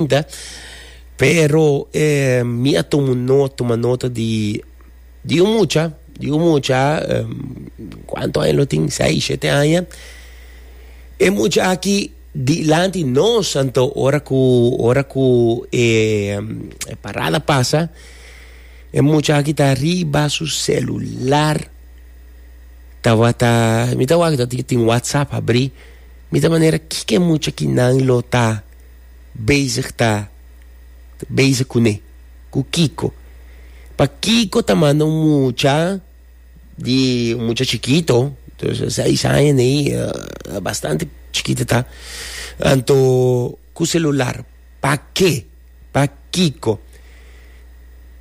cuenta, pero mi a tuma nota, tuma nota di, di un mucha, di un mucha, cuanto aña lo tin, seis, siete aña, e mucha aki dilanti nos, anto ora cu, ora cu e, e parada pasa, e mucha aki ta riba su celular, tabata, mi ta wak tin whatsapp habri, mi ta manera kiko e mucha kinan lo ta. bezig ta bezig kuné? Ku kiko? Pa kiko ta manda un mucha di un mucha chikito, entonces seis aña nei a bastante chikito ta, anto ku selular? Pa ke? Pa kiko?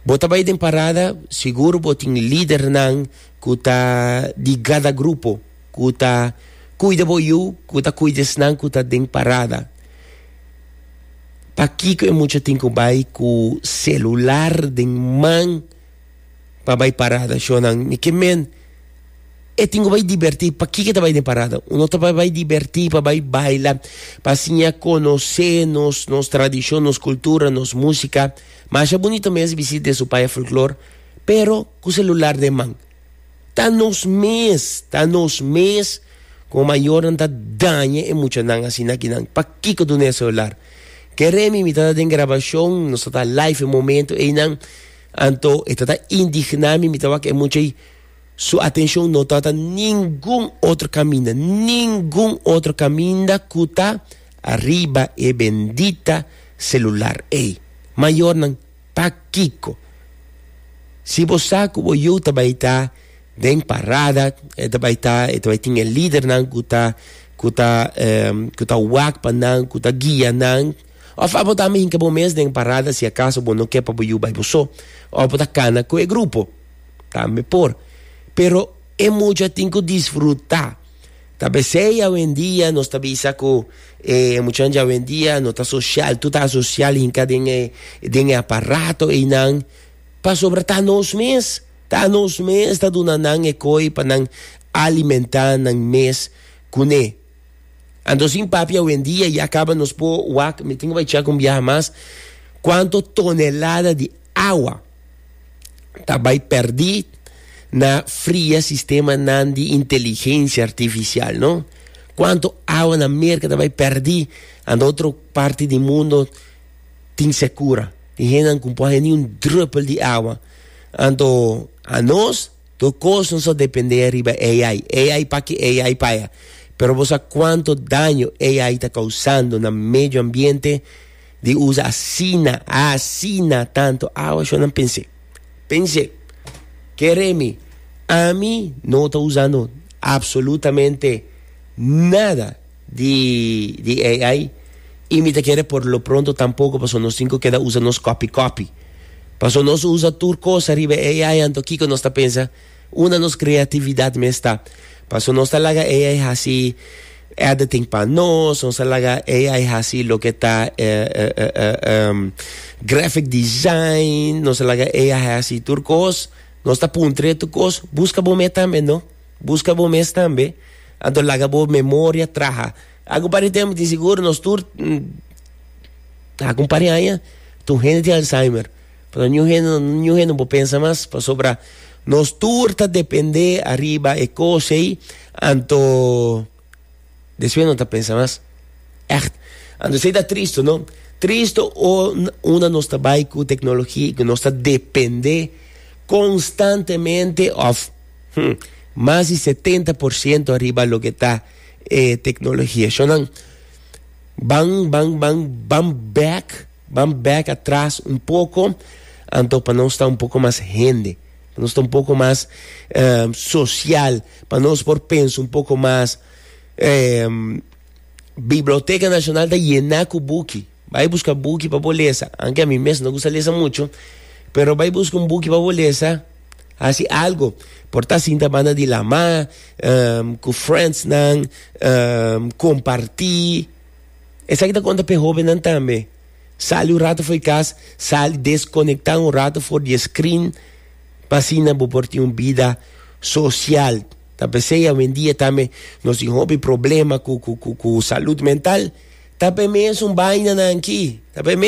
Bo ta bai den parada sigur bo tin lidernan ku ta di gada grupo ku ta kuida bo yu, ku ta kuida esnan ku ta den parada. Pakiko e mucha tin ku bai ku selular den man pa bai parada? Shonnan, mi ke men e tin ku bai dibertí. Pakiko e ta bai den parada? Uno ta bai dibertí, pa bai baila, pa siña konosé nos nos tradishon, nos kultura, nos músika. Masha bunito mes bisita den su paya folklor, pero ku selular den man. Ta nos mes, ta nos mes como mayornan ta daña e muchanan asina ki nan pakico duna e celular. Ke remi mi ta ta den grabacion, nos ta ta live e momento eynan, anto e ta ta indigna mi, mi ta wak e mucha ey su atencion no ta ta ningun otro caminda, ningun otro caminda cu ta ariba e bendita celular ey. Mayornan. Pakiko? Si bo sa ku bo yu ta bai ta den parada, e ta bai ta, e ta bai tin e lidernan ku ta, ku ta, ku ta wak pa nan, ku ta guia nan. Òf abo ta hinka bo mes den parada si akaso bo no ke pa bo yu bai bo so, òf bo ta kana ku e grupo, tambe por. Pero e mucha tin ku disfruta. Ta p'esei awendia nos ta bisa ku e muchanan di awendia no ta sosial, tur ta asosial hinka den e den e aparato einan, pasobra ta nos mes, ta nos mes ta duna nan e koi pa nan alimentá nan mes kuné. Anto sin papia awendia ya kaba nos por wak, mi tin ku bai chèk un biaha mas, kuanto tonelada di awa, ta bai perdí na fria sistemanan di inteligensia artifisial, no? Kuantu awa na Merka ta bai perdí anto otro parti di mundo tin sekura. Tin hendenan ku por haya ni un drùpel di awa. Anto anos tur kos nos a dependé ariba AI. AI p'aki, AI pa aya. Pero bo sa kuantu daño AI ta kausando na medio ambiente? Di usa asina, asina tanto awa shon nan pensé. Pensé, keremi, ami no ta usando absolutamente nada di, di AI y mi ta kere por lo pronto tampoco paso nos tin keda usa nos copy copy. Paso nos usa tur cosa riba AI anto kiko nos ta pensa Una nos creatividad mes ta. Paso nos ta laga AI haci editing pa nos, nos ta laga AI haci loke ta graphic design, nos ta laga AI haci tur cos, nos ta puntre tur cos, busca bo mes tambe no, busca bo mes tambe, anto laga bo memoria traha. Acu pari tempo tin sigur nos tur, acu un par di aña, tur hende tin alzheimer. Pasobra niun hende, niun hende no por pensa mas, pasobra nos tur ta depende ariba e cos ey, anto despues no ta pensa mas. Echt. Anto esey ta tristo, no? Tristo un, una nos ta bay cu tecnologia y cu nos ta depende constantemente of, hm, mas di setenta por ciento ariba loke ta e tecnologia. Eshonan ban, ban, ban, ban back. Ban bek atras un poko anto pa nos ta un poko mas hende, pa nos ta un poko mas sosial, pa nos por pensa un poko mas. Biblioteka Nashonal ta yená ku buki, bai buska buki pa bo lesa, aunke ami mes no gusta lesa muchu, pero bai buska un buki pa bo lesa, hasi algu, por ta sinta banda di lamá, ku friendsnan, kompartí. Esaki ta konta p'e hóbennan tambe. Sali un ratu for di kas, sali deskonekta un ratu for di e skrin pa asina bo por tin un bida sosial. Ta p'esei awendia tambe nos tin hopi problema ku salud mental ta p'e mes un bainanan akí, ta p'e mes.